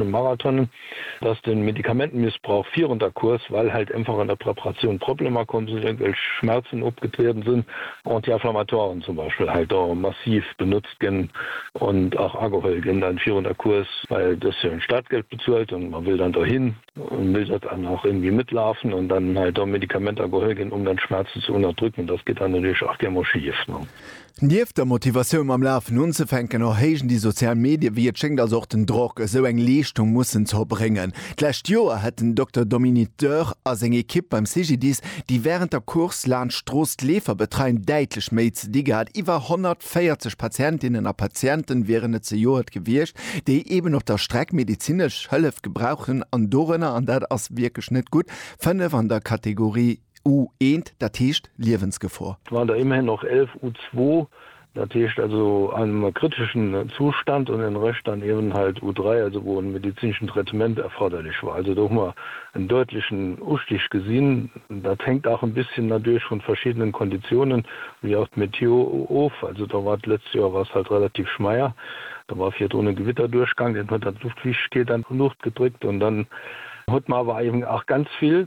Dem Marathon, dass den Medikamentenmissbrauch virun der Course, well halt einfach an der Preparatioun Problemer komm sinn, irgendwelch Schmerzen opgetrieden sinn, Anti-inflammatoiren zum Beispiel halt da massiv benutzt ginn und ach ageholl ginn dann virun der Course, well et ass jo en Startgeld bezuelt und man will dann dohin und will dat dann och irgendwie mitlaufen und dann halt da Medikamenter geholl ginn, um dann d'Schmerzen ze unterdrücken, das geht dann natürlich ach gär mol schief, ne. Nieft der Motivatioun mam Lafen unzefänken, erhéijen déi sozial Medie wéi et schéngt also och den Drock, esou eng Leeschtung mussen ze erbréngen. D'lescht Joer hätt den Dokter Dominique Dörr a seng Ekipp beim CGDIS, déi wärend der Course laanscht d'Strooss d'Leefer betreien, däitlech méi ze di gehat. Iwwer 140 Patientinnen a Patienten wieren et zejoert gewiescht, déi eben op der Streck medezinesch Hëllef gebrauchen an dorënner, an dat ass wierklech net gutt, fënnef an der Kategorie. U-eent, dat heescht Liewensgefor. Waren der immerhin noch 11 U-zwou, dat heescht also einem kritischen Zustand, und den Rest dann eben halt U-dräi, also wou en medizinischen Traitement erforderlich war. Also do hu mer en deutlichen Ustig gesinn. Dat hängt auch en bisschen nadurch vun verschiedenen Konditionen, wie auch d'Meteo, of. Also do war d'letzt Joer war es halt relativ schmeier, do war virdrun en Gewitterdurchgang, deen huet dann d'Luftfeuchtigkeit an d'Luucht gedrückt, und dann huet mer awer eben auch ganz vill,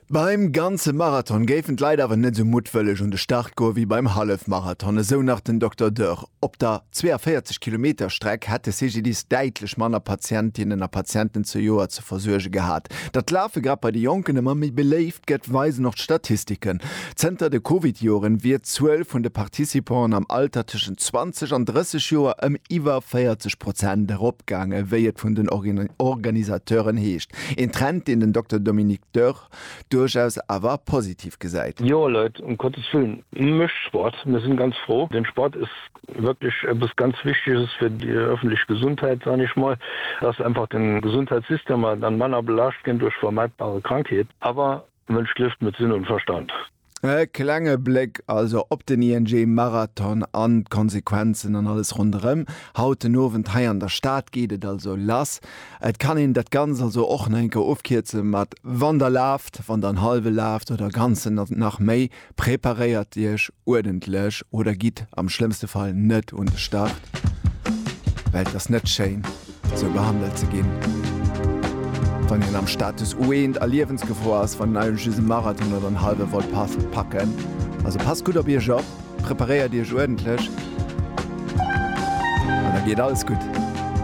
Beim ganze Marathon géifen d'Leit awer net esou muttwëlleg un de Start goe wéi beim Hallefmarathon, esou nach den Dokter Dörr. Op der 42 Kilometer Streck hätt de CGDIS däitlech manner Patientinnen a Patienten zejoert ze versuerge gehat. Datt d'Lafe grad bei de Jonken ëmmer méi beléift gëtt, weisen och d'Statistiken. Zënter de Covid-Joren wier d'Zuel vun de Participanten am Alter tëschent 20 an 30 Joer ëm iwwer 40 Prozent eropgaange, wéi et vun den Organisateuren heescht. Een Trend, deen den Dokter Dominique Dörr duerchaus awer positiv gesäit. Jo Leit, um Gottes Willen, mécht Sport, mir sinn ganz fro. Den Sport ass wierklech eppes ganz Wichteges fir déi öffentlech Gesundheit, soen ech mol, dass einfach den Gesundheitssystem dann manner belaascht ginn duerch vermeidbare Krankheeten. Awer Mënsch lieft mat Sinn an Verstand. E klenge Bléck also op den ING Marathon an d'Konsequenzen an alles ronderëm. Haut den Owend hei an der Stad geet et also lass. Et kann een dat Ganzt also och nach eng Kéier ofkierze mat Wann der laaft, wann der en hallwe laaft oder ganzen oder nach méi. Preparéiert Iech uerdentlech oder gitt am schlëmmste Fall net un de Start, well et ass net schéin, sou behandelt ze ginn, wann een am Status Ueent a Liewensgefor ass. Wann Dir just e Marathon oder en hallwe wollt packen, also passt gutt op Iech op, preparéiert Iech uerdentlech an da geet alles gutt.